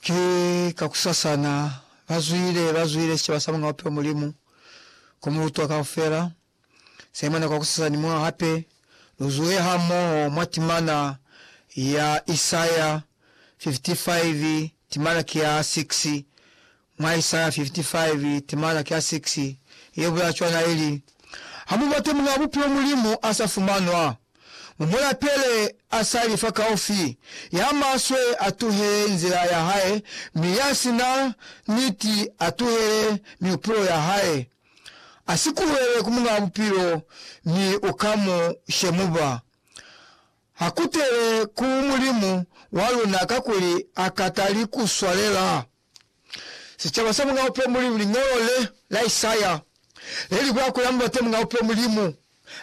Ki kakusasana, ba zwile, ba zwile sicaba sa Muñ'a Bupilo Mulimu, ku mu lutwa kaufela. Saimona kwakusasa ni mwa hape, lu zuhe hamoho mwa timana ya Isaya 55, timana ki ya 6, Mwa Isaya 55, timana ki a 6, ye bulaa cwana ili, Ha mu bate Muñaa Bupilo Mulimu a sa fumanwa, mu mu lapele a sa li fa kaufi, ya maswe a tuhele nzila ya hae, mi ya si na niti a tuhele mihupulo ya hae. A si kuhele ku Muñaa Bupilo, mi u ka mu shemuba. Ha kutele ku Mulimu wa luna kakuli ha ka tali ku swalela. Sicaba sa Muñ'a Upe Mulimu Liñolo le la Isaya le li bula kuli, Amubate Muñ'a Upe Mulimu,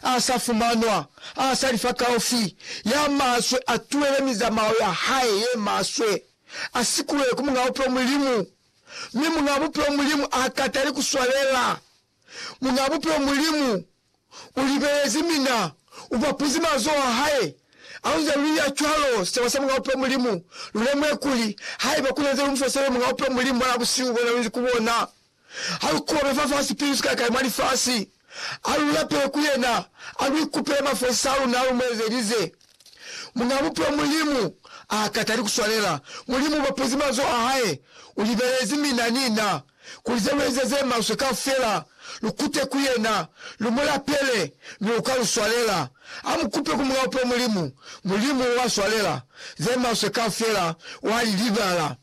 a sa fumanwa, a sa li fakaufi, ya maswe, a tuhele mizamao ya hae ye maswe, a sikulwe ku Muñ'a Upe Mulimu, mi Muñ'a Bupe Mulimu ha katali ku swalela. Muñaa Bupilo Mulimu ulibelezi mina ubapuzi mazoho ahae. Hakunze luya cwalo, sicaba sa Muñaa Bupilo Mulimu lulemuhe kuli, haiba kunanze lumufosele Muñaa Bupilo Mulimu mwanaa busihu bona lunzi ku bona, halukobe fafasi sipili sikakale mwa lifasi, alulapele ku yena, aluikupele mafosisa aluna alumuezelize. Muñaa Bupilo Mulimu aakatali kuswanela. Mulimu ubapuzi mazoho ahae, ulibelezi mina, nina. kuli ze lu eze ze maswe kaufela, lu kute ku yena, lu mu lapele, mi u ka lu swalela. Ha mu kupe ku Mulao pe Mulimu, Mulimu u a swalela. Ze maswe kaufela wa li libala,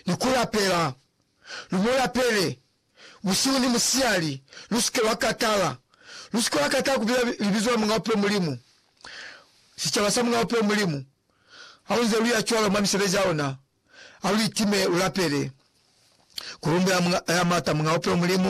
ni ku lapela. Lu mu lapele, busihu ni musiyali. Lu si ke lwa katala. Lu si ke lwa katala ku bila libizo la Mulao pe Mulimu, sicaba sa Mulao pe Mulimu, ha u nze lu ya cwalo mwa misebezi ya luna. Aulitime ulapele, kulumbela Muñaa Maata, Muñaa Bupelo Mulimu,